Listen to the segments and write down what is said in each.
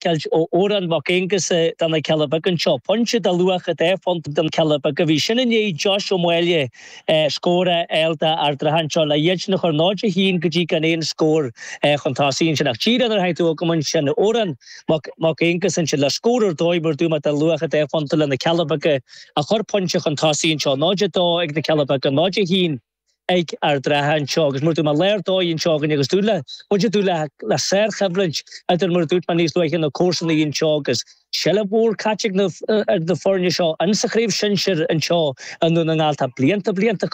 Ceilt ó Odhrán Mac Aonghusa do na Cealla Beaga anseo. Pointe de luach dhá phointe do na Cealla Beaga. Bhí sin i ndiaidh Josh Ó Maolaodha, scór a fháil d'Ard an Rátha anseo. Le iad sin a chur 0-1 go dtí gan aon scór chun tosaigh ansin. Ach díreach nuair a tháinig tú chugam ansin, Odhrán Mac Aonghusa ansin le scór ar dóigh mar a dúirt mé de luach dhá phointe le na Cealla Beaga a chur pointe chun tosaigh anseo. 0-2 ag na Cealla Beaga, 0-1. ag Ard an Rátha anseo agus mar a dúirt mé lá ar dóigh anseo againne agus dúil le muid ag dúil le le sárchoimhlint idir mar a dúirt mé níos luaithe na comharsanaí anseo agus seal mór caite ag na ag na foirne seo in sa chraobh shinsir anseo i nDún na nGall tá blianta blianta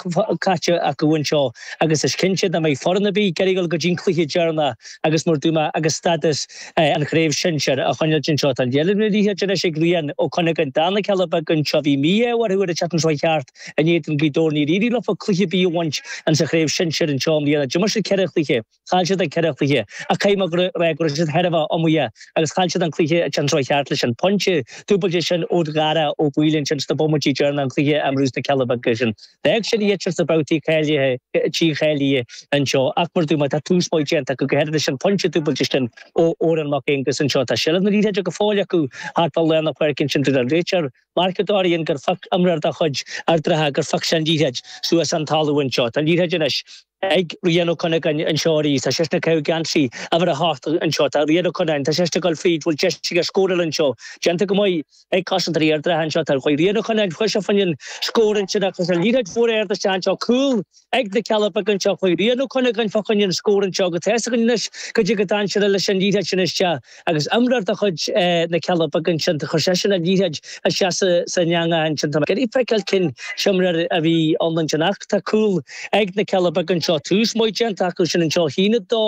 caite acu anseo agus is cinnte nach mbeidh foireann ar bith ag iarraidh a ghabháil go dtí an cluiche deireanach agus mar a dúirt mé agus stádas an chraobh shinsir a choinneáil anseo tá seilbh na liathróide anois ag Rian Ó Cuinneagáin do na Cealla Beaga anseo bhí mí-ádh orthu ar an seachtain seo chuaigh thart In éadan Gaoth Dobhair níor éirigh leo cluiche ar bith a bhaint in sa chraobh shinsir anseo i mbliana. D'imir siad ceithre chluiche, chaill siad an ceithre chluiche ach caithfidh mé a rá go raibh siad thar a bheith iomaíoch agus chaill siad an cluiche an tseachtain seo chuaigh thart leis an pointe dúbailte sin ó Dhara Ó Baoill ansin sna bomaití deireanacha an cluiche i mBrú sna Cealla Beaga sin. Bheadh siad iad sin sna babhtaí cáilithe trí cháilithe anseo ach mar a dúirt mé tá tús maith déanta acu go háirithe leis an pointe dúbailte sin ó Odhrán Mac Aonghusa anseo. Tá seilbh na liathróide go fóill acu thart fá lár na páirce ansin dúirt an réiteoir Mark Dorrian gur phioc imreoir de chuid Ard an Rátha, gur phioc sé an liathróid suas ón talamh anseo. Tá an liathróid anois ag Rian Ó Cuinneagáin anseo arís. Tá seisean ag caitheamh geansaí uimhir a hocht anseo. Tá Rian Ó Cuinneagáin, tá seisean ag dul fríd, bhfuil deis aige scóráil anseo? Déanta go maith ag cosantóirí Ard an Rátha anseo. Tá Rian Ó Cuinneagáin, chuaigh sé fá choinne scór ansin ach tá an liathróid mhór ard isteach anseo. Cúl. Ag na Cealla Beaga anseo chuaigh Rian Ó Cuinneagáin fá choinne an scór anseo go tes againn anois go dtí go dtáan siad leis an liathróid sin isteach agus imreoir de chuid na Cealla Beaga ansin chuir seisean an liathróid isteach san eangach ansin tá mé ag feiceáil cén t-imreoir a bhí ann ansin ach tá cúl ag na Cealla Beaga anseo tús maith déanta acu sin anseo 1 2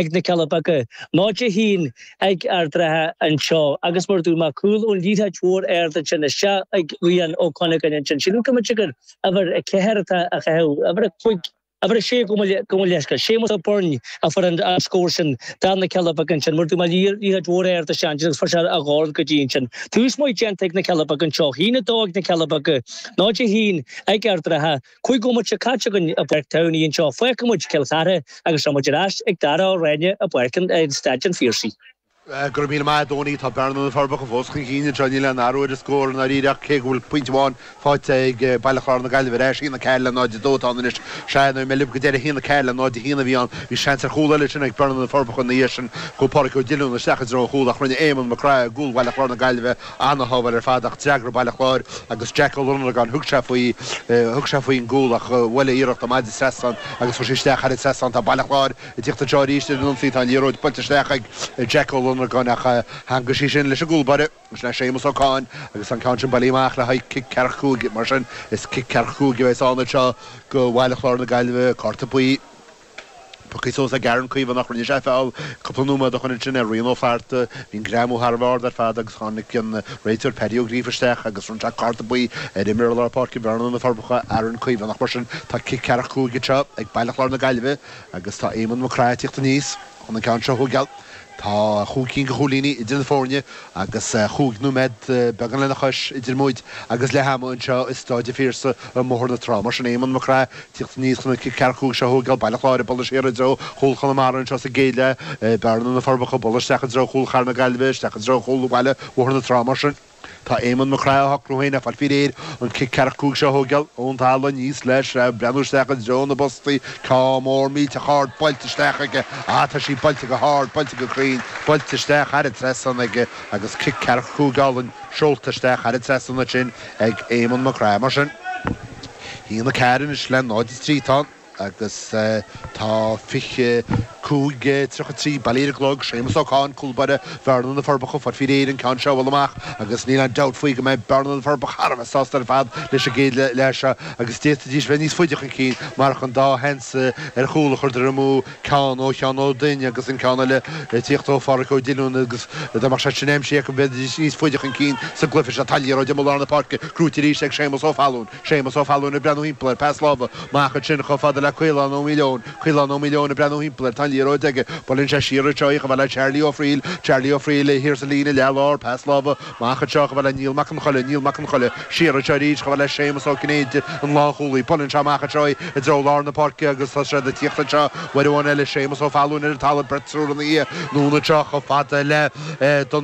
ag na Cealla beaga 0 1 ag Ard an Rátha anseo agus mar a dúirt mé cúl ón liathróid mhór ard ansin isteach ag Rian Ó Cuinneagáin ansin sílim go mb'fhéidir gur Uimhir a ceathair atá á chaitheamh. Uimhir a cúig. Uimhir a sé, gabh mo leithscéal. Séamus Ó Beirn a fuair an scór sin do na Cealla Beaga ansin mar a dúirt mé liathróid mhór ard ansin agus fuair sé a dhorn go dtí ansin. Tús maith déanta ag na Cealla Beaga anseo. Haon a dó ag na Cealla Beaga. Náid a haon ag Ard an Rátha. Cúig bhomaite caite againn i bPáirc Towney anseo. Fágfaidh muid Cill Chartha agus tá muid ar ais ag Dara Ó Ráinne i bPáirc an Staid an Phiarsaigh. Go raibh míle maith agat a Dony, tá Bearna-Na Forbacha fós chun cinn anseo. Níl aon athrú ar an scór i ndáiríre ach cé go bhfuil pointe amháin faighte ag Baile Chláir-Na Gaillimhe ar ais, 1-4 le 0-2 atá ann anois. Sea, nuair a bhí mé libh go deireadh, 1-4 le 0-1 a bhí ann. Bhí seans ar chúl eile sin ag Bearna-Na Forbacha ina dhiaidh sin. Chuaigh Pádraig Ó Diollúin isteach i dtreo an chúil ach rinne Éamonn Mac Craith i gcúl Bhaile Chláir-Na Gaillimhe, an-shábháil ar fad ach d'fhreagair Baile Chláir agus Jack Ó Lonargáin, thug sé faoi, thug sé faoin gcúl ach bhuail a iarracht amach den trasnán agus chuaigh sí isteach thar an trasnán. Tá Baile Chláir. Ag tíocht anseo arís ar an ionsaí, tá an liathróid buailte isteach ag Jack Ó Lonargáin ach theangaigh sí sin leis an gcúl báire, is le Séamus Ó Catháin agus tá an ceann sin bailithe amach le haghaidh cic ceathracha cúig. Mar sin, is cic ceathracha cúig a bheas anseo do Bhaile Chláir na Gaillimhe. Cárta buí. Pioctha suas ag Aaron Caomhánach, rinne sé feall cúpla nóiméad ó shin ansin ar Rian Ó Flatharta. Bhí an greamú thar a bheith ard ar fad agus tháinig an réiteoir Paddy Ó Gríofa isteach agus bhronn sé cárta buí ar imreoir lár páirce Bhearna-Na Forbacha, Aaron Caomhánach. Mar sin, tá cic ceathracha cúig anseo ag Baile Chláir na Gaillimhe. Agus tá Éamonn Mac Craith ag teacht aníos chun an ceann seo a thóigeáil. Tá chúig cinn de chúilíní idir na foirne agus chúig nóiméad beagán lena chois idir muid agus leath ama anseo i Staid an Phiarsaigh i mBóthar na Trá. Mar sin Éamonn Mac Craith ag teacht aníos chun an cic ceathracha cúig seo a thóigeáil, Baile Chláir ag dul siar i dtreo chúl Chonamara anseo sa gcéad leath, Bearna-Na Forbacha ag dul isteach i dtreo chúl Chathair na Gaillimhe isteach i dtreo chúl Bhaile Bhóthar na Trá. Mar sin. Tá Éamonn Mac Craith á shocrú féin ag fáil faoi réir an cic ceathracha cúig seo a thóigeáil ón talamh aníos leis ag breathnú isteach i dtreo na bpostaí. Ceann mór millteach ard buailte isteach aige. Á, tá sí buailte go hard, buailte go cruinn, buailte isteach thar an trasnán aige agus cic ceathracha cúig álainn seolta isteach thar an trasnán ansin ag Éamonn Mac Craith. Mar sin, 1-4 anois le 0-3. Tá an. Agus tá 25, 33 bailithe ar an gclog, Séamas Ó Catháin, cúl báire, Bearna, Na Forbacha, ag fáil faoi réir an ceann seo a bhualadh amach agus níl aon dabht faoi go mbeidh Bearna, Na Forbacha thar a bheith sásta ar fad leis an gcéad leath seo agus d'fhéadfaidís bheith níos faide chun cinn marach an dá sheans ar chúl a chuireadar amú, ceann ó Sheán Ó Duinn agus an ceann eile ag tíocht ó Pháraic Ó Diolún agus dá mbeadh sé sin aimsithe acu bheidís níos faide chun cinn sa gcluiche seo. Tá an liathróid amuigh i lár na páirce, gnóite arís ag Séamas Ó Fallúin. Séamus Ó Fallúin ag breathnú thimpeall air, pas láimhe amach ansin chomh fada le Caolán Ó Maoileoin, Caolán Ó Maoileoin ag breathnú thimpeall air, tá an liathróid aige, buaileann sé siar anseo í chomh fada le Charlie Ó Fraoill, Charlie Ó Fraoill é thiar sa líne leath lár, pas láimhe amach anseo chomh fada le Neil Mac an Choille, Neil Mac an Choille, siar anseo arís chomh fada le Séamus Ó Cinnéide, an lánchúlaí, buaileann sé amach anseo í i dtreo lár na páirce agus tá siad ag tíocht anseo uair amháin eile Séamus Ó Fallúin ar an talamh beirt triúr ina dhiaidh, anonn anseo chomh fada le Don